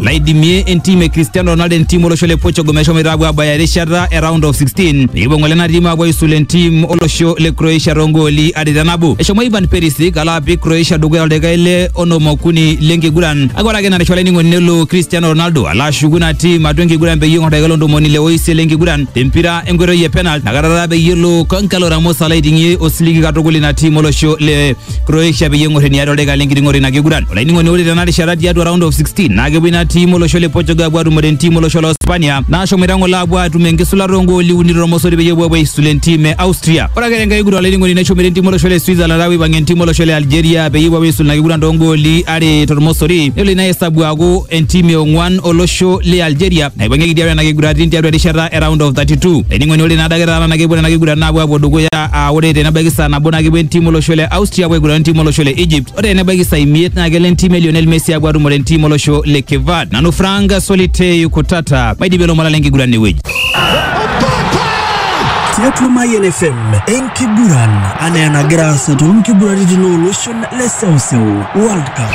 naidimie entim e Cristiano Ronaldo entim olosho le Portugal meshomoita apuo abaya erishata e round of 16 neibung olena tim apuo aisul entim olosho le Croatia toongooli are te nabo eshomo Ivan Perisic alo apik Croatia dukuya oldakai le onom okuni lenkiguran kake ore ake narisho olainining'oni nelo Cristiano Ronaldo alo ashuku ina tim atua enkiguran peyie eng'or dakai lontomoni le oisiet lenkiguran tempira enkoitoi e penalty nakata taa peyie elo Goncalo Ramos alo aiting'ie osiligi katukul ina tim olosho le Croatia peyie eng'or eniare oldaika lenkiting'ore ina kiguran. Olainining'oni ore tena rishata tiatua round of 16 naa kepuo ina tiim olosho le Portugal apuo atumore entiim olosho le Hispania nashomoita ng'ole apuo atum enkisulata oongooli uni tormosori peyie epuo apuo aisula entiim e Austria. Ore ake tenkae kiguran olainining'oni neshomoita entiim olosho le Switzerland apuo aipang entiim olosho le Algeria peyie epuo apuo aisul ina kiguran toongooli are tormosori nelo ina hesabu aaku entiim e ong'uan olosho le Algeria naipang'ieki tiatua ina kiguratin tiatua erishata e round of 32. Olainining'oni ore naa adake taata naa kepuo nena kiguran apuo apuo dukuya aa ore tenebaiki saa nabo naa kepuo entim olosho le Austria apuo aiguran entim olosho le Egypt. Ore tenebaiki saa imiet naa kelo entim e Lionel Messi apuo atumore entim olosho le Kevad. Nanu Frank Solitei Kutata maidipie lomon lang enkiguran inewueji. tiatua Mayian FM enkiguran anaa enagira aasa toonkiguraritin ooloshon le seuseu World Cup.